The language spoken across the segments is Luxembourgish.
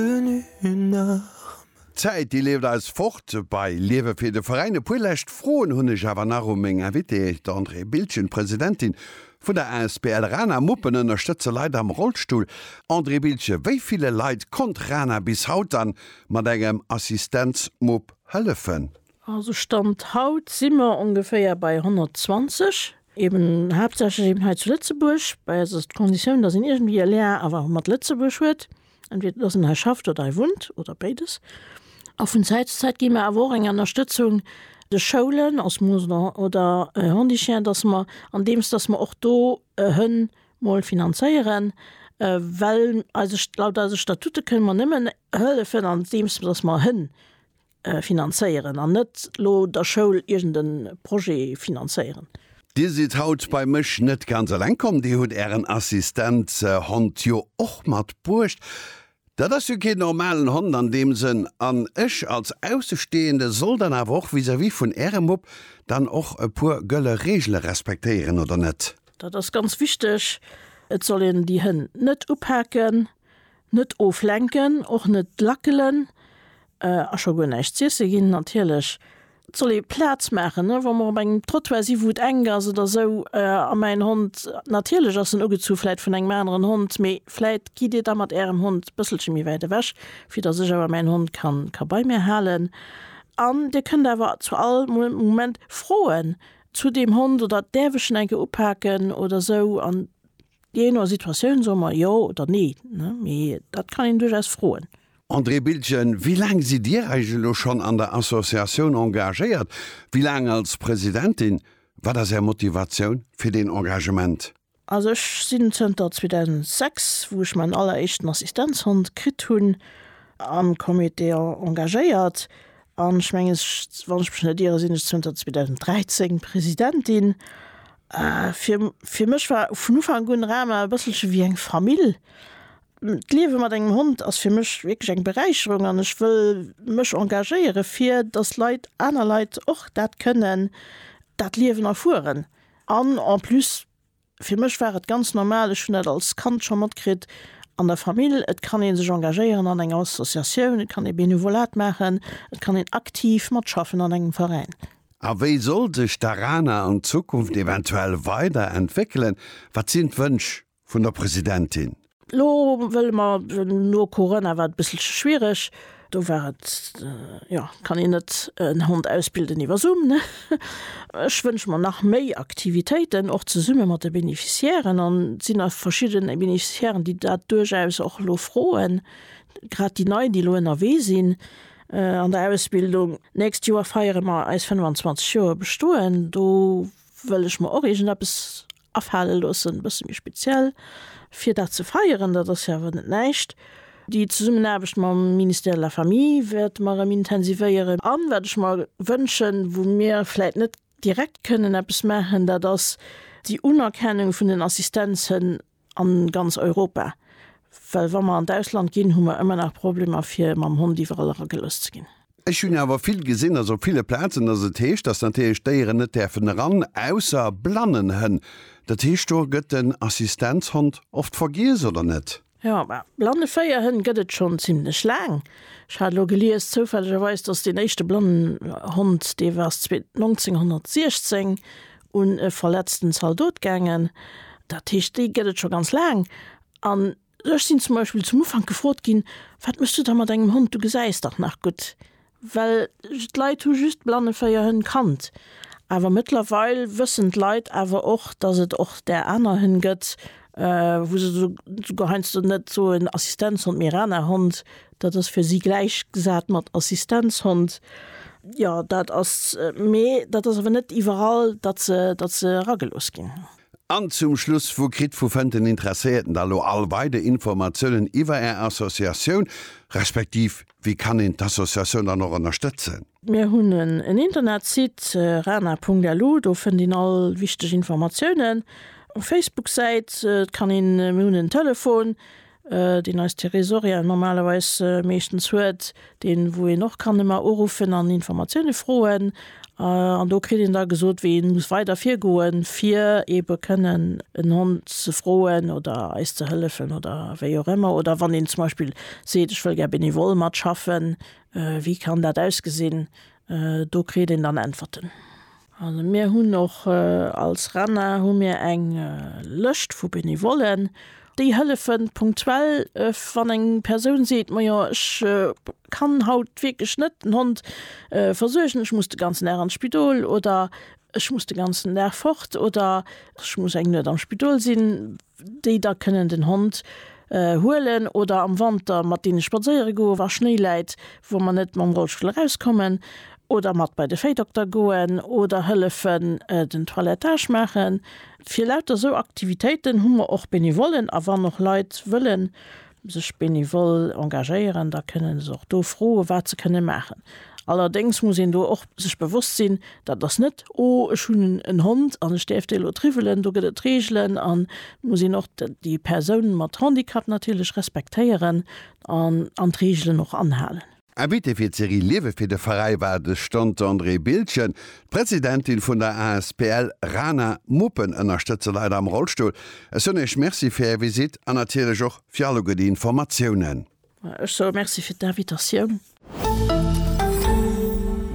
tenu une arme. D'Zäit déi leeft eis fort bei Liewe fir de Veräin. E puer lescht Froen hunn ech awer nach u meng Invitée, d'Andrée Bildgen, d'Presidentin vun der asbl Rana Muppen ënnerstëtze Leit am Rollstull. Andrée Bildgen, wéi ville Leit konnt Rana bis haut dann mat engem Assistenzmupp hëllefen? Also Stand haut si mer ongeféier bei 120, eben haaptsächlech eben hei zu Lëtzebuerg. Bei eis ass d'Conditioun, dass een iergendwéi e Lien awer mat Lëtzebuerg huet. entweder dass en hei schafft oder hei wunnt oder béides. A vun Zäit zu Zäit gi mer awer och eng Ënnerstëtzung de Schoulen als Moosler oder Hondichiens, dass mer andeems dass mer och do e Hënn mol finanzéieren, well eise laut eise Statute kënne mer nëmmen hëllefen andeems dass mer Hënn finanzéieren an net lo der Schoul iergend e Projet finanzéieren. Dir sidd haut bei mech net ganz eleng komm, dir hutt ären Assistenzhond jo och mat bruecht. Dat ass jo keen normalen Hond an deem Sënn an ech als Aussestehende soll dann awer och vis-à-vis vun ärem Mupp dann och e puer gëlle Regele respektéieren, oder net? Dat ass ganz wichteg, et soll een déi Hënn net upaken, Net oflenken, och net lackelen a scho guer näischt z'iesse ginn natierlech. Et soll ee Plaz maachen, wa mer op engem Trottoir si wou et enk ass oder esou. A mäin Hond, natierlech ass en ugezu vläit vun engem aneren Hond, mee vläit gitt Dir da mat Ärem Hond e bësselche méi wäit ewech, fir datt ech awer mäin Hond ka bei mir halen. An Dir kënnt awer zu all Moment froen zu deem Hond oder, Däerf ech en enke upaken oder esou. An. Jee no Situatioun soe mer jo oder nee, mee dat kann een duerchaus froen. André Biltgen, Wéi laang sidd Dir eis elo schonn an der Associatioun engagéiert? Wéi laang als Presidentin? Wat ass Är Motivatioun fir deen Engagement? Also ech sinn zënter 2006, wou ech mäin alleréischten Assistenzhond kritt hunn, am Comité engagéiert. An ech mengen, wann ech mech net iere, sinn ech zënter 2013 Presidentin. Fir, fir mech war vun Ufank un Rama e bësselche wéi eng Famill. D'Liewe mat engem Hond ass fir mech wierklech eng Beräicherung an ech wëll mech engagéiere fir, datt Leit, aner Leit och dat kënnen, dat Liewen erfueren. An en plus Fir mech war et ganz normal, ech hunn dat als Kand scho matkritt an der Famill, et kann ee sech engagéieren an enger Associatioun, et kann ee Benevolat maachen, et kann een aktiv matschaffen an engem Veräin. A wéi soll sech d'ARANA an Zukunft eventuell weider entwéckelen? Wat sinn d'Wënsch vun der Presidentin? Lo wëlle mer no Corona war et e bësselche schwiereg. Do war et, jo, kann een net en Hond ausbilden iwwer Zoom, ne? Ech wënsche mer nach méi Aktivitéiten, och zesumme mat de Beneficiairen. An et sinn nach verschidde Beneficiairen, déi dat duerchaus och elo froen, grad déi Nei, déi elo ënnerwee sinn an der Ausbildung. D'nächst Joer feiere mer eis 25 Joer Bestoen. Do wëll ech mer och iergendeppes. afale loossen, e bësse méi speziell, fir dat ze feieren, dat ass jo awer net näischt. Déi Zesummenaarbecht mam Ministère de la Famille wäerte mer erëm intensivéieren. An wat ech mer wënschen, wou mir vläicht net direkt kënnen eppes maachen, dat ass déi Unerkennung vun den Assistenzhënn a ganz Europa. Well wa mer an d'Ausland ginn, hu mer ëmmer nach Problemer, fir mam Hond iwwerall eragelooss ze ginn. Ech hunn awer vill gesinn, dass op ville Plazen, dass et heescht, dass natierlech Déieren net däerfen eran, ausser Blannenhënn. Dat heescht, do gëtt den Assistenzhond oft vergiess, oder net? Jo, mä Blanneféierhënn gëtt et schonn zimlech laang. Ech hat elo gelies, zoufällegerweis, dass deen éischte Blannenhond, dee war 1916 un e verletzten Zaldot gaangen. Dat heescht, déi gëtt et scho ganz laang. An Ech sinn zum Beispill zum Ufank gefrot ginn, Wat méchs du da mat engem Hond, du gesäis dach nach gutt? Well d'Leit hu just Blanneféierhënn kannt. Awer mëttlerweil wëssen d'Leit awer och, datt et och där aner Hënn gëtt, wou se souguer heiansdo net soen Assistenzhond, mee Rana-Hond, dat ass fir si gläichgesat mat Assistenzhond. Jo, dat ass, mee dat ass awer net iwwerall, datt se eragelooss ginn. An zum Schluss, Wou kritt, wou fënnt den Interesséierten da lo all weider Informatiounen iwwer Är Associatioun, respektiv wéi kann een d'Associatioun dann och ënnerstëtzen? Mir hunn en Internetsite, rana.lu, do fënnt een all wichteg Informatiounen. Facebook-Säit kann een, mir hunn en Telefon, deen eis Therésoriel normalerweis meeschtens huet, deen, wou een och kann ëmmer uruffen an Informatioune froen. An do kritt een da gesot, wéi ee muss weider virgoen, fir eebe kënnen en Hond ze froen oder eis ze hëllefen oder wéi och ëmmer. Oder wann een zum Beispill seet, ech wëll gär benevol matschaffen, wéi kann dat ausgesinn? Do kritt een dann Äntwerten. Also mir hunn och als RENA hu mir eng Lëscht vu Benevollen, déi hëllefen punktuell, wann eng Persoun seet, majo ech kann haut wierklech net den Hond versuergen, ech muss de ganzen Dag an d'Spidol oder ech muss de ganzen Dag fort oder ech muss eng Nuet am Spidol sinn. déi da kënnen den Hond huelen oder am Wanter mat deene spadséiere goen, wa Schnéi läit, wou mer net mam Rollstull erauskommen, oder mat bei de Véidokter goen oder hëllefen den Toilettage maachen. Fir lauter esou Aktivitéiten hu mer och Benevollen a wann och Leit wëllen sech benevol engagéieren, da kënnen se och do froe wat se kënne maachen. Allerdéngs muss een do och sech bewosst sinn, dat ass net, oh ech hunn en Hond an ech däerf dee lo triwwelen, do gëtt et Reegelen an et muss een och déi Persoun mat Handicap natierlech respektéieren an an d'Reegelen och anhalen. Invité fir d'Serie Liewe fir de Veräi war de Stanter André Bildgen. D'Presidentin vun der asbl Rana Muppen ënnerstëtze Leit am Rollstull. Ech soen Iech Merci fir Är Visitt an natierlech och fir alleguer déi Informatiounen. Ech soe Merci fir d'Invitatioun.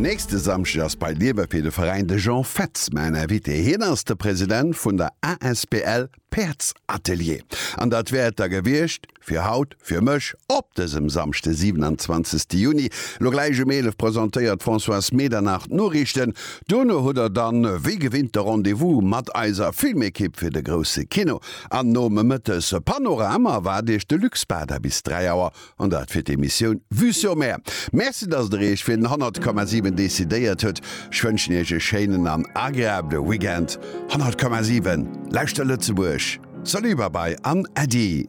Nächste Samschdeg ass bei Liewe fir de Veräin de Jean Fetz mäin Invité. Hien ass de President vun der asbl Päerdsatelier. An dat wär et da gewiescht fir haut fir mech op dësem Samschde 27 Juni. Lo gläich um 11 presentéiert d'Françoise Medernach d'Noriichten. Duerno hutt der dann wéi gewinnt de Rendez-vous mat eiser Filmekipp fir de grousse Kino. An nomëttes Panorama waart iech de Luc Spada bis 3 Auer An dat fir d'Emissioun Vue sur Mer. Merci, dass Der Iech fir den 100,7 decidéiert hutt. Ech wënschen Iech e schéinen an agreabele Weekend. 100,7, Lauschter Lëtzebuerg! Salut, Babai an Äddi!